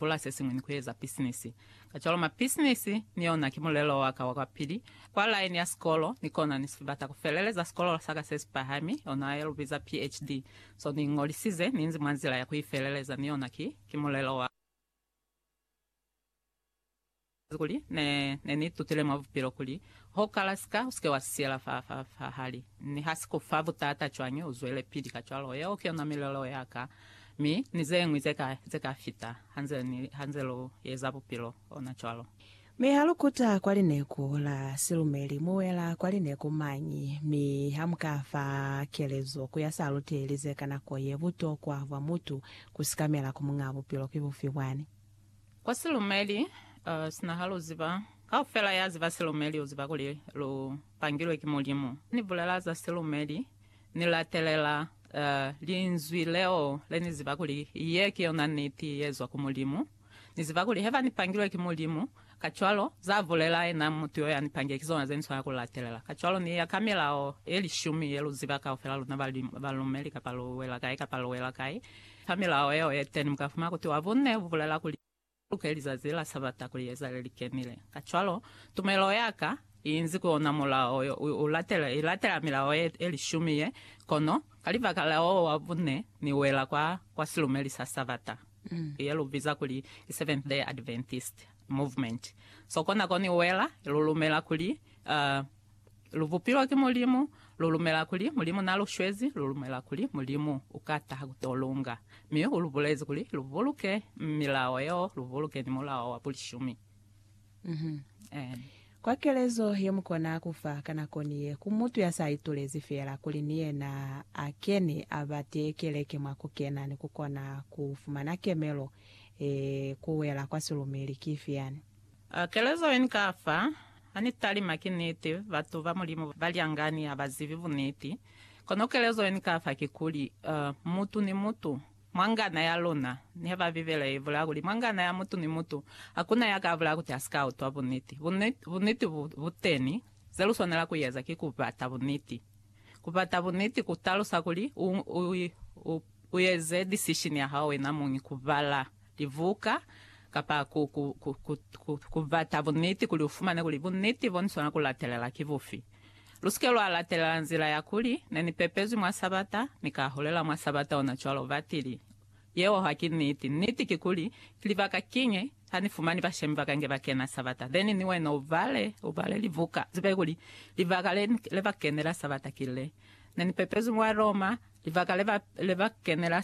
bula se siñwi ni ku eza bisinisi. Kacwalo mabisinisi ni yona ki mulelo wa ka wa kwa pili kwa laini ya sikolo, ni kona ni si bata ku feleleza sikolo sa ka se si pahami, ona ye lu biza PhD. So ni iñolisize ni nzi mwa nzila ya ku i feleleza ni yona ki, ki mulelo wa. Kuli ne, ne ni tutile mwa bupilo kuli, ho kala sika, usike wa siyela fa, fa, fa hali. Mi ha si ku fa butata cwañi uzwelepili kacwalo, yeo ki yona milelo ya ka. Mi, ni zeñwi ze ka, ze ka fita, ha nze ni, ha nze lu eza bupilo, ona cwalo. Mi ha lu kuta kwa lineku la silumeli, mu wela kwa lineku mañi, mi ha mu ka fa kelezo ku ya sa luteli ze ka nako ye, butokwa bwa mutu ku sikamela ku Muñaa Bupilo ki bufi bwani? Kwa silumeli, uh, sina ha lu ziba, kaufela ya ziba silumeli u ziba kuli lu pangilwe ki Mulimu. Ni bulela za silumeli, ni latelela, uh, Linzwi leo le ni ziba kuli ye ki yona niti ye zwa ku Mulimu. Ni ziba kuli heba ni pangilwe ki Mulimu, Kacwalo, za bulela yena mutu yo yani pange ki zona ze ni swana ku latelela. Kacwalo, ni ya ka milao ye lishumi ye lu ziba kaufela luna ba balumeli, kapa lu wela kai kapa lu wela kai, fa milao yeo ye teni mu ka fumana kuti wa bunne bu bulela kuli, Lu luke lizazi la Sabata kuli ye zale li kenile. Kacwalo, tumelo ya ka i inzi ku ona mulao yo, u latela, i latela milao ye, ye lishumi ye, kono ka libaka la wo wa bunne, ni wela kwa, kwa silumeli sa Sabata. ye lu biza kuli i Seventh-day Adventist Movement. So kona ko ni wela, lu lumela kuli, uh, lu bupilwe ki Mulimu, lu lumela kuli Mulimu na lu shwezi, lu lumela kuli Mulimu uka taha ku to lunga. Mi u lu bulezi kuli lu buluke milao yeo, lu buluke ni mulao wa bulishumi. Kwa kelezo ye mu kona ku fa ka nako ni ye ku mutu ya sa itulezi fela kuli ni yena a keni a ba tee keleke mwa ku kena ni ku kona ku fumana kemelo ye ku wela kwa silumili ki ifi yani? Kelezo ye ni ka fa, Ha ni talima ki niti, batu ba Mulimu ba lyangani ha ba zibi buniti. Kono kelezo ye ni ka fa kikuli, mutu ni mutu Mwa ngana ya luna, niha ba Bibele i bula kuli, Mwa ngana ya mutu ni mutu, hakuna ya ka bula kuti a si ka utwa buniti. Buniti, buniti bu, bu teni. Ze lu swanela ku eza ki ku bata buniti. Ku bata buniti ku talusa kuli u, u, u, u eze decision ya hao wena muñi, ku bala libuka, kapa ku, ku, ku, ku, ku, ku bata buniti kuli u fumane kuli buniti bo ni swanela ku latelela ki bufi. Lusike lwa latelela nzila ya kuli, Ne ni pepezwi mwa Sabata, mi ka hulela mwa Sabata ona cwalo. Batili, Yeo ha ki niti. Niti ki kuli, ki libaka kiñwi ha ni fumani bashemi ba ka nge ba kena Sabata. Then ni wena u bale, u bale libuka, zibe kuli, libaka le, le ba kenela Sabata ki le. Ne ni pepezwi mwa Roma, libaka le ba, le ba kenela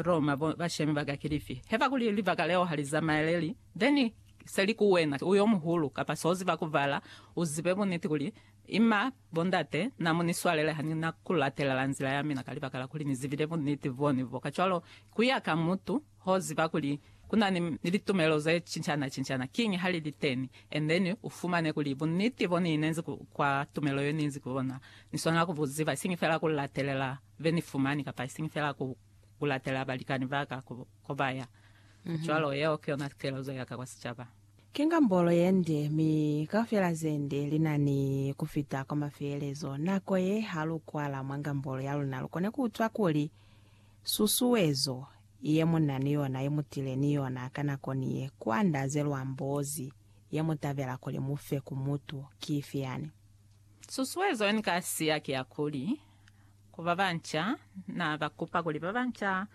Roma, bo, bashemi ba ka ki lifi? Heba kuli libaka leo ha li zamaeleli, then, Seli ku wena, u yomuhulu, kapa so ziba ku bala, u zibe buniti kuli, Ima, bo ndate, na mu ni swalele ha ni na ku latelela nzila ya mina ka libaka la kuli ni zibile buniti bo ni bo. Kacwalo, ku ya ka mutu, ho ziba kuli ku na ni, ni litumelo ze cincana-cincana, kiñi ha li li teni. Endeni u fumane kuli buniti bo ni inezi ku, kwa tumelo yo ni inzi ku ona, ni swanela ku bu ziba, isiñi fela ku latelela be ni fumani, kapa isiñi fela ku, ku latelela balikani ba ka, ku, Ku ba ya cwalo, yeo ki yona kekezo ya ka kwa sicaba. Ki ngambolo ye nde, mi kaufela ze nde li na ni ku fita kwa mafelelezo. Nako ye, ha lu kwala mwa ngambolo ya luna, lu kona ku utwa kuli susuezo ye mu na ni yona ye mu tile ni yona ka nako ni ye ku andaze lwa mbozi ye mu tabela kuli mu fe ku mutu ki ifi yani. Susuezo ye ni ka siya ki ya kuli, Ku ba banca, Na ba kupa kuli ba banca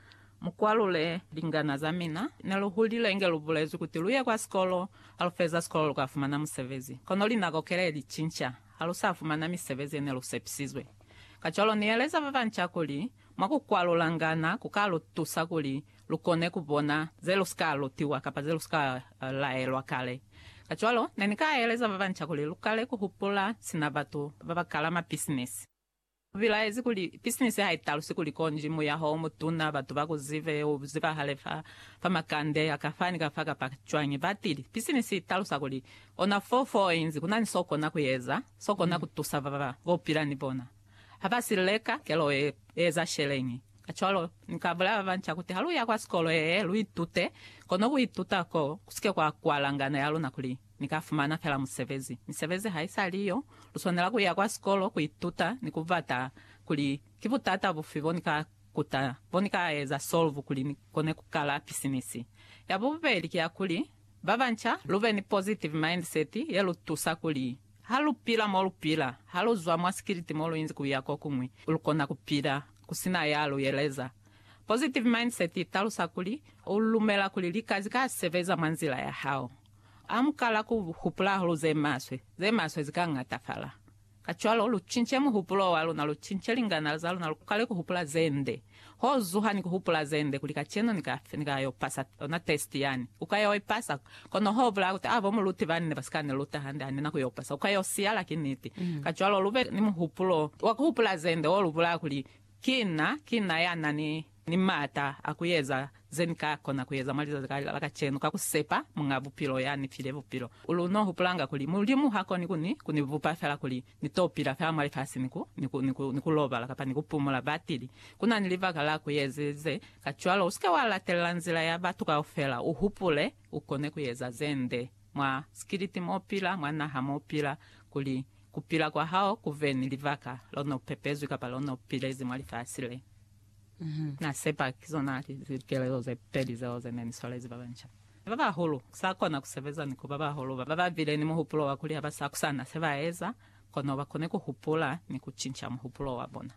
mu kwalule lingana za mina. Ne lu hulile inge lu bulezwi kuti lu ye kwa sikolo, ha lu feza sikolo lu ka fumana musebezi. Kono linako kele li cinca, ha lu sa fumana misebezi ye ne lu sepisizwe. Kacwalo ni yeleza ba banca kuli mwa ku kwalula lingana ku ka lu tusa kuli lukone kubona zelusika lutiwa kapa zelusika laelwa kale. Kacwalo, nenika eleza babanca kuli lukale kuhupula sina batu babakala mabisinisi. Ubilaezi kuli, Bisinisi haitalusi kuli konji muyaho omutuna, batu bakuzibe, uzibahale fa fa makande akafani kafa kapa cwañi. Batili, Bisinisi italusa kuli ona fo foinzi kunani sokona kueza, sokona kutusa baba bopila ni bona. Haba sileka kelo e, eza sheleñi. Kacwalo, Ni ka bulaya babanca kuti ha lu ya kwa sikolo yee, lu itute, kono ku ituta koo, ku si ke kwa kwala ngano ya luna kuli, Ni ka fumana fela musebezi. Misebezi ha i sa li yo, lu swanela ku ya kwa sikolo, ku ituta, ni ku bata kuli ki butata bufi bo ni ka kuta, bo ni ka eza solve kuli ni kone ku kala pisinisi. Ya bubeli ki ya kuli, babanca, lu be ni positive mindset ye lu tusa kuli, ha lu pila mo lu pila, ha lu zwa mwa sikiliti mo lu inzi ku ya kokuñwi, lu kona ku pila Ku si na ya lu yeleza. Positive mindset i talusa kuli, u lumela kuli lika zi ka sebeza mwa nzila ya hao. A mu kala ku hupula hahulu ze maswe, ze maswe zi ka ñatafala. Kacwalo, lu cince muhupulo wa luna, lu cince linganala za luna, lu kale ku hupula ze nde. Ho zuha ni ku hupula ze nde kuli kacenu ni ka, ni ka yo pasa ona test yani. U ka yo i pasa. Kono ho bulaya kuti abo mu luti bani ne ba si ka ni luta hande hande na ku yo pasa. Ku ka yo siyala ki niti. Kacwalo lu be ni muhupulo wa ku hupula ze nde wo lu bulaya kuli, Ki na, ki na ya na ni, ni m'ata a ku eza ze ni ka kona ku eza mwa lizazi la, la kacenu ka ku sepa Muñ'a Bupilo ya ni file Bupilo. Lu n'o hupulanga kuli, Mulimu ha koni ku ni, ku ni bupa fela kuli Ni to pila ka mwa lifasi ni ku, ni ku, ni ku, ni ku lobala, kapa ni ku pumula batili. Ku na ni libaka la ku eza ze. Kacwalo, u si ke wa latelela nzila ya batu kaufela. U hupule, u kone ku eza ze nde, mwa sikiliti m'o pila, mwa naha m'o pila, kuli ku pila kwa hao ku be ni libaka, lo n'o pepezwi kapa lo n'o pilezi mwa lifasi le. Na sepa ki zona likelelo ze peli zeo ze ne ni swalezi ba banca. Ba bahulu ku sa kona ku sebeza ni ku ba bahulu ba ba bile ni muhupulo wa kuli ha ba sa kusana se ba eza, kono ba kone ku hupula ni ku cinca muhupulo wa bona.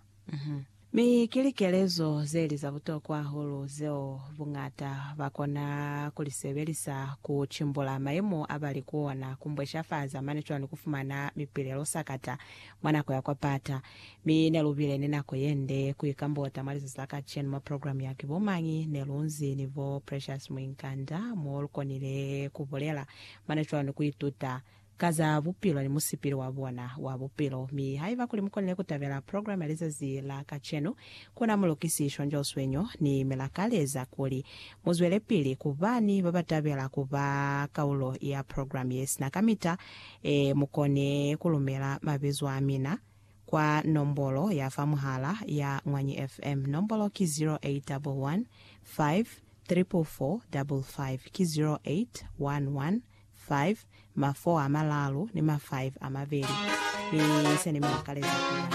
Mi ki likelezo ze li za butokwa hahulu zeo buñata ba kona ku li sebelisa ku cimbula mayemo a ba li ku ona, ku mbweshafaza mane cwalo ni ku fumana mipilelo sakata mwa nako ya kwa pata. Mi nelubile ni nako yende kuikambota mwa lizazi la kacenu mwa program ya Ki Bo Mañi Nelunzi ni bo Precious Muinkanda, mo lukonile kubulela mane cwalo ni kuituta ka za bupilo ni musipili wa bona wa bupilo. Mi haiba kuli mukonile kutabela program ya lizazi la kacenu, kuna Mulukisi Shonjo Swenyo ni milakaleza kuli muzwelepili kuba ni babatabela kuba kaulo ya program yesina kamita E, mukone kulumela mabizo amina kwa nombolo ya fa muhala ya Ñwanyi FM. Nombolo ki 0811544555, ki 081155 ma 4 a malaalu ni ma 5 a mabeli. Mi se ni mi lakaleza ku.